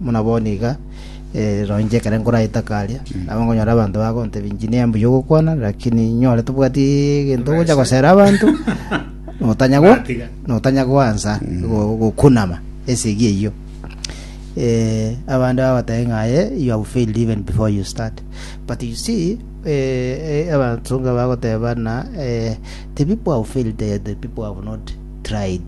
Buna bono iga, rora, inche ekero nkoraete aka aria, nabo nkonyora abanto bagontebia, Engineer, mbuya ogokwana, lakini inyore tobwati egento ogocha gosera abanto, notanya go- Natiga. notanya goansa go- gokunama esegi eyio. Eh, abande bagoteba ng'a aye, you have failed even before you start. But you see, eh, eh, abanto nga bagoteba na, eh, the people who have failed, they are the people who have not tried.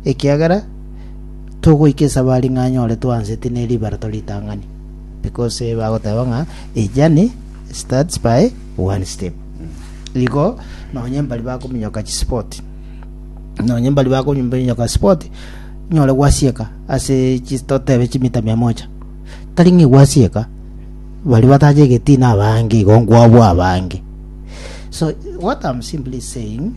Ekiagera togoika esabari ng'a anyore twanseti ne ribara toritang'ani. Because eh, bagoteba ng'a a journey starts by one step. Igo nonye mbari bakominyoka chisport nonye mbari bakominyoka sport nyore gwasieka ase chi- totebe chimita mia moja tari ng'i gwasieka bari batache egetina abange igo nkwabwa abange so what I'm simply saying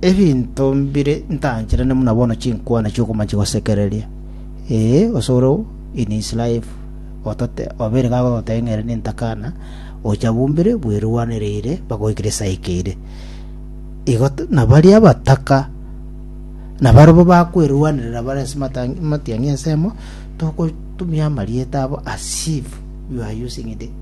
Ebinto mbire ntancherane buna bono chinkwana chi'okomancha gosekereria. Ee, osore oo, in his life, otote, obeire gagototebia ng'a ere nentakana, ocha bumbire bwerwanereire mpaka goikera esaa ekeire. Igo t- na baria abataka nabarabwo bakwerwanerera bare ase matang- amatiang'i ensemo, togotumia amarieta abo as if you are using the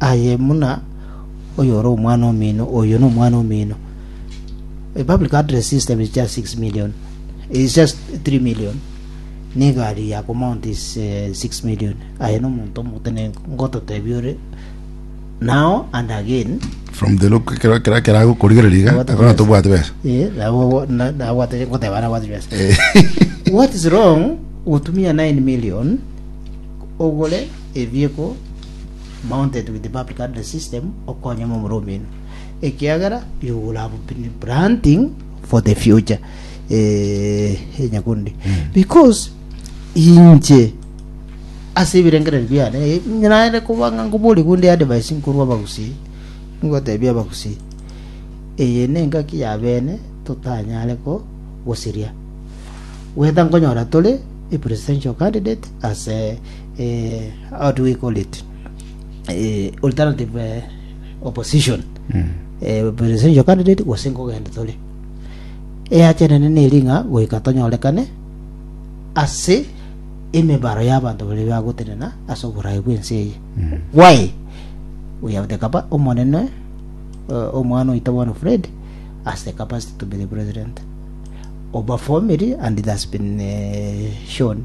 Aye buna oyore omwana omino, oyo nomwana omino. A public address system is just 6 million. It's just 3 million. Negari ya kumount is uh, 6 million. Aye nomonto omotene ngototebi ore now and again from the look kera kera kera gukurigereria iga What akona is- tobwate besa Eh, nabo- na- nabwate- ngoteba nabwate besa. Eh. what is wrong gotumia 9 million ogore ebieko mounted with the public address system okonyama omoro omino ekiagera you will have been planting for the future eh, eh, nyakundi because inche ase ebirengererio biane eh, naende kobanga nkobori gunde advice nkorwa abagusii ngotebia abagusii eye nengaki ya bene totanyare ko gosiria weta nkonyora tore a presidential candidate as a, eh, how do we call it eh, alternative eh, opposition eh, presidential candidate gose nkogenda tore eachenene neringa goika tonyorekane ase emebaro y'abanto bari bagotenena ase oborae bw'ense eye why we have the capa omonene uh, omwana oito bono fred has the capacity to be the president obaformiri and it has been uh, shown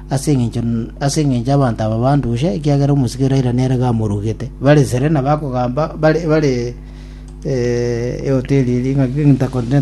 ase engencho ase engencho y'abanto aba bandushe, ekiagera omosike Iraira nere gamorugete. Bare Serena bakogamba bare bare Eoteri eria ing'aki Intercontinental.